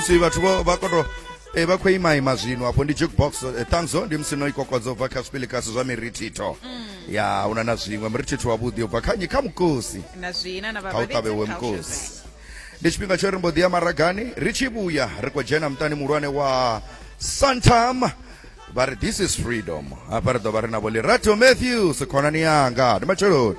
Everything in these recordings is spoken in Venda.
si vhathu vho vha koto e vha khou ima ima zwino afho ndi jukebox eh, ṱanzo ndi musi no i kokodzo bva kha zwipilikasi zwa mirithitho ya una na zwiṅwe mirithitho wavhuḓi ubva kha nyi kha mukosi na zwina na kha u ṱavhewe mukosi ndi tshifhinga tsho ri mbo ḓi ya maragani ri tshi vhuya ri khou dzhena muṱani muhulwane wa santam vha ri this is freedom hafha ri ḓo vha ri na vho lirato matthews khonani yanga ndi matsheloni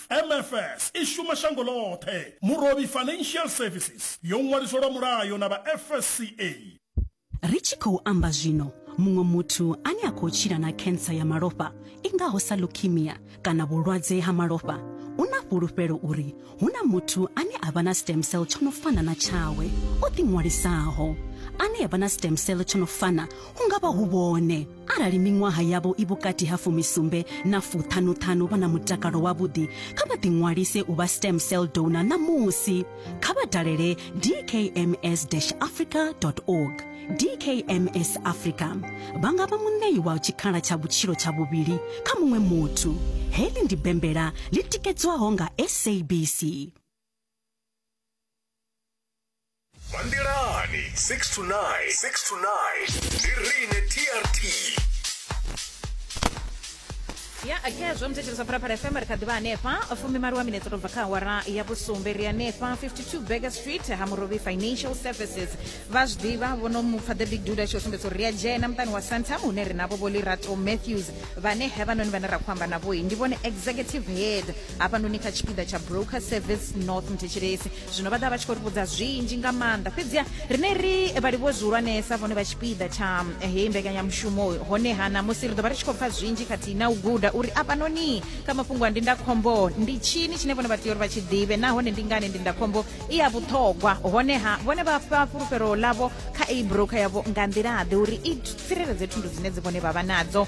MFS i shuma shango ḽoṱhe. Murovhi Financial Services yo ṅwaliswa lwa mulayo na vha FSCA. Ri tshi khou amba zwino, muṅwe muthu ane a khou tshila na khensa ya malofha i ngaho sa leukemia kana vhulwadze ha malofha u na fhulufhelo uri hu na muthu ane a vha na stem cell tsho no fana na tshawe o ḓiṅwalisaho. Ane a vha na stem cell tsho no fana hu nga vha hu vhone. Arali miṅwaha yavho i vhukati ha fumisumbe na fuṱhanuṱhanu vha na mutakalo wavhuḓi, kha vha ḓiṅwalise u vha stem cell donor ṋamusi. Kha vha dalele dkms-africa.org. DKMS Africa vha nga vha muṋei wa tshikhala tsha vhutshilo tsha vhuvhili kha muṅwe muthu. Heḽi ndi bembela ḽi tikedzwaho nga SABC. vha nḓilani 6 to 9 6 to 9 ndi rine trt ya akhezwo muthetshelesa phalaphala fm ri kha ḓivha hanefha fumi malo wa minetse u tou bva kha awara ya vhusumbe ri hanefha 52 burger street ha murobi financial services vha zwi ḓivha vhono mupfa the big duda tshi o sumbedza uri ri a dzhena muṱani wa santam hune ri navho vho lirato matthews vhane hevhanoni vhane ra khou amba navhoi ndi vhone executive head hafhanoni kha tshipiḓa tsha broker service north muthetshelesi zwino vha ḓa vha tshi khou ri vhudza zwinzhi nga maanḓa fhedziha rine ri vhalivhuwe zwihulwanesa vhone vha tshipiḓa tsha eh, heyi mbekanyamushumo honeha ṋamusi ri ḓo vha ri tshi khou pfa zwinzhi khathihi na u guda uri afhanoni kha mafhungo a ndindakhombo ndi tshini tshine vhone vha tea uri vha tshi ḓivhe nahone ndi ngani ndindakhombo i ya vhuṱhogwa honeha vhone vha fha fhulufhelo ḽavho kha eyi broker yavho nga nḓilaḓe uri i tsireledze thundu dzine dzi vhone vha vha nadzo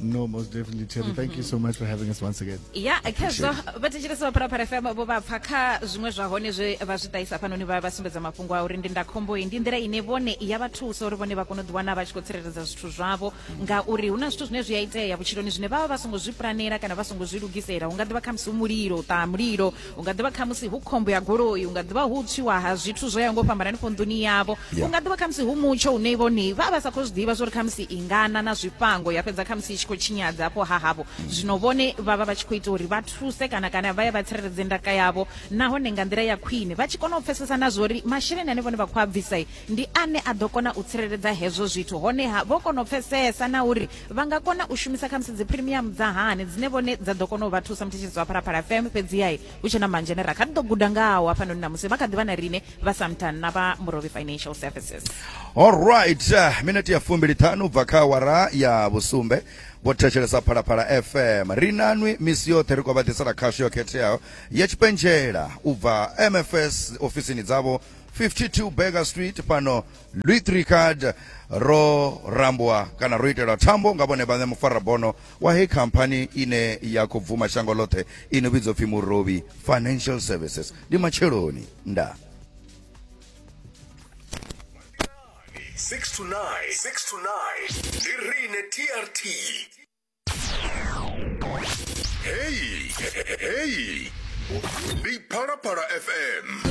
No, most definitely, Terry. Mm -hmm. Thank you so much for having us once again. Yeah, khezwo vha thetshelesa vha Phalaphala FM vho vha pfa kha zwiṅwe zwa hone zwe vha zwi ṱahisa hafhanoni vha vha sumbedza mafhungo a uri ndindakhombo iyi ndi nḓila ine vhone ya vha thusa uri vhone vha kone u ḓiwana vha tshi khou tsireledza zwithu zwavho ngauri hu na zwithu zwine zwi a itea vhutshiloni zwine vha vha vha songo zwi pulanela kana vha songo zwi lugisela hu nga ḓivha khamusi hu mulilo u ṱaha mulilo u nga ḓivha khamusi hu khombo ya goloi u nga ḓivha hu tswiwa ha zwithu zwo ya ngo fhambana hanefho nḓuni yavho u nga ḓivha khamusi hu mutsho une vhone vha vha sa khou zwi ḓivha zwo ri khamusi i ngana na zwifhango ya fhedza khamusi i tshi khou tshinyadza afho ha havho mm. zwino vhone vha vha vha tshi khou ita uri vha thuse kana kana vha ye vha tsireledze ndaka yavho nahone nga nḓila ya khwine vha tshi kona u pfesesa na zwo uri masheleni ane vhone vha khou a bvisa ndi ane a ḓo kona u tsireledza hezwo zwithu honeha vho kona u pfesesa na uri vha nga kona u shumisa khamusi dzi premium dza hani dzine vhone dza ḓo kona u vha thusa muthetshedzi wa phalaphala fm fhedziai hu tshe na manzhi ane ra kha ḓi ḓo guda ngawo hafhanoni na musi vha kha ḓi vha na rine vha samtan na vha murovi financial services allright uh, minete ya fumbili ṱhanu bva kha awara ya vhusumbe vho thetshelesa phalaphala fm ri nanwi misi yoṱhe ri khou vha ḓisela khasho yo khetheaho ya tshipentshela u bva mfs ofisini dzavho 52 burger street fhano Louis Tricard ro rambwa kana ro itelwa thambo nga vhone vhaṋe mufarabono wa heyi khamphani ine ya khou bvuma shango ḽoṱhe i no vhidzwa pfhi murovhi financial services ndi matsheloni nda 6 to 9 6 to 9 ndi rine trt heyi heyi ndi phalaphala fm